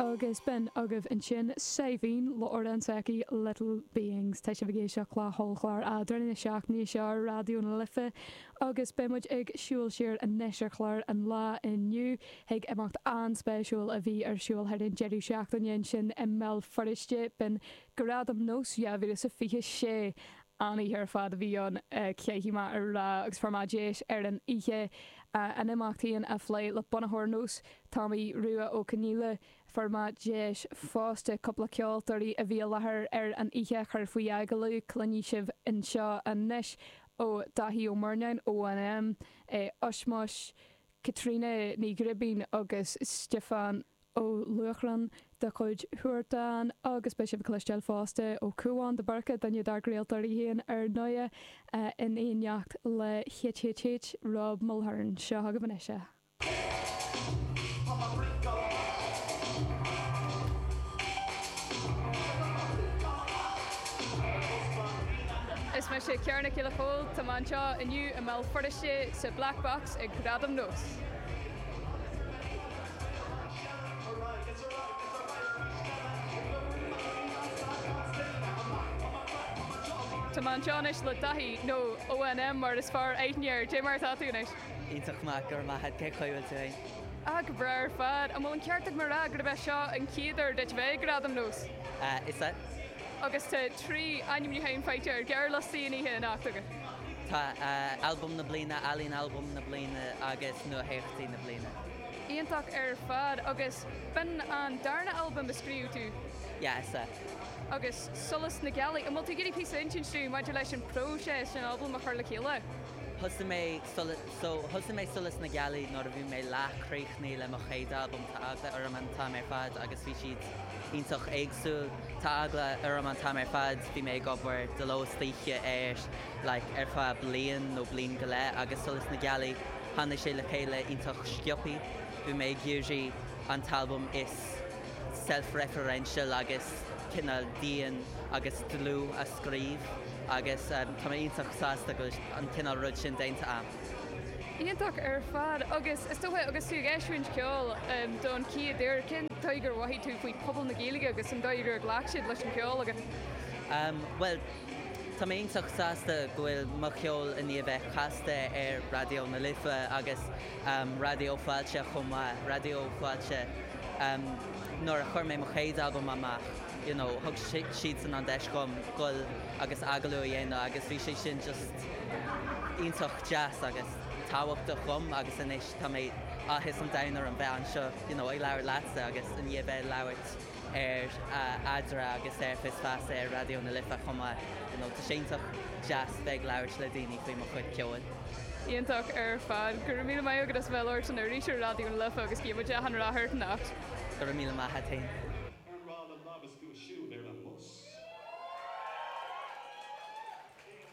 Agus b'in agaibh ansin Saidhbhín Lawrence aici, Little Beings. Tá sibh ag éisteacht le hollchlár eadrainn an na seachtaine seo ar Raidió na Life agus beidh muid ag siúl siar anois ar chlár an lá inniu chuig imeacht an-spéisiúil a bhí ar siúl thar an deireadh seachtaine ansin i mBéal Feirste. B'in Gradam Nós 2026 An-oíche ar fad a bhí ann, deis mhaith ar lá agus fuair muid deis ar an oíche. An imeacht féin á phlé le bunaitheoir Nós, Tomaí Rua Ó Conghaile. Fuair muid deis fosta, cúpla ceoltóirí a bhí i láthair ar an oíche a chur faoi agallamh, cluinfidh sibh anseo anois ó Daithí Ó Murnáin, ONM, Ushmush, Caitríona Ní Ghribín agus Stiofán. Ó Luachráin de chuid Huartán agus beidh sibh ag cloisteáil fosta ó Cuán de Búrca, duine dár gcraoltóirí féin ar ndóigh, in éineacht le HHH, Rob Mulhern. Seo agaibh anois é. Is mise Ciara Nic Giolla Chomhaill. Tá mé anseo inniu i mBéal Feirste sa Black Box ag Gradaim Nós. Tá mé anseo anois le Daithí, nó ON M mar is fearr aithne air. Dé mar atá tú anois? Iontach maith, go raibh maith a'd, cé caoi bhfuil tú fhéin? Ah, go breá ar fad. An bhfuil an ceart agam a rá gurb é seo an chéad uair duit a bheith ag Gradaim Nós? Ah, is ea. Agus tá trí ainmniúchán faighte ar ghearrliostaí an oíche anocht agat. Tá, Albam na Bliana, Ealaín Albaim na Bliana agus Nuatheacht na Bliana. Iontach ar fad. Agus b'in an darna albam a scríobh tú? Is ea, agus Solas na Gealaí. An bhfuil tú ag iarraidh píosa a insint dúinn maidir leis an bpróiseas den albam a chur le chéile? Thosaigh mé Solas, so, thosaigh mé Solas na Gealaí nuair a bhí mé leath críochnaithe le mo chéad albam, tá eagla orm an t-am ar fad agus bhí siad iontach éagsúil, tá eagla orm an t-am ar fad, bhí mé ag obair de ló is d'oíche air like ar feadh bliain nó bliain go leith agus Solas na Gealaí, Tháinig sé le chéile iontach sciobthaí. Bhí mé ag iarraidh an t-albam is self-referential agus cineál dian agus dlúth a scríobh agus tá mé iontach sásta go bhfuil an cineál rud sin déanta agam. Iontach ar fad agus is dócha agus tú ag eisiúint ceoil don chéad uair, cén dóigh gur mhothaigh tú faoi pobal na Gaeilge agus an dóigh gur ghlac siad leis an cheol agat? Bhuel, Tá mé iontach sásta go bhfuil mo cheol i ndiaidh bheith casta ar Raidió na Life agus Raidió Fáilte chomh maith. Raidió Fáilte, nuair a chuir mé mo chéad albam amach, you know, thug siadsan an deis dhom goil agus agallamh a dhéanamh agus bhí sé sin just iontach deas agus tábhachtach dhom agus anois tá mé, áthas an domhain orm bheith anseo, you know, ag labhairt leatsa agus i ndiaidh bheith ag labhairt. ar Eadra agus ar Fios Feasa ar Raidió na Life chomh maith. You know, tá sé iontach deas bheith ag labhairt le daoine faoi mo chuid ceoil. Iontach ar fad. Go raibh míle maith agat as a bheith ag labhairt linn arís ar Raidió na Life agus guímid achan rath ort a Neacht. Go raibh míle maith agat féin. Ar mhaith le labhairt go siúd ar an mbus?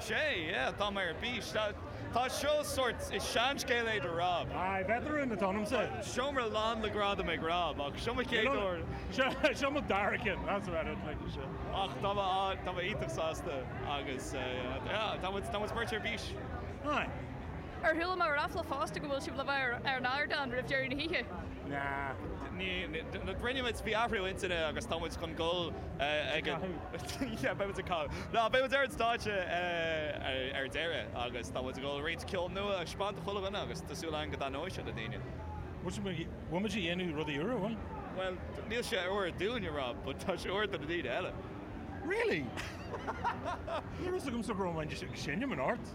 Sea, yeah, tá mé ar bís. Tá, tá seo sórt, is seanscéal é do Rob. Aye, veteran atá ionamsa. Seomra lán le gradaim ag Rob, ach seo mo chéad uair. Seo, seo mo dara ceann, that's about it, like. Ach tá mé, tá mé iontach sásta agus yeah, tá muid, tá muid beirt ar bís. Aye. Ar chuala mé ráfla fosta go bhfuil sibh le bheith ar an ardán roimh dheireadh na hoíche? Nah. Ní, ní, rinne muid, bhí athrú intinne agus tá muid chun goil ag an. yeah, beidh muid ag canadh. Ná, beidh muid ar an stáitse ar deireadh agus tá muid ag dul roinnt ceol nua a thaispeáint do chuile dhuine agus tá súil againn go dtaitneoidh sé le daoine. Bhfuil muid ag dhéanamh rudaí úra, bhfuil? Bhuel, níl sé úr dúinn, a Rob, but tá sé úr do na daoine eile. Really? Ní raibh a fhios agamsa go raibh muid ag seinm in Art.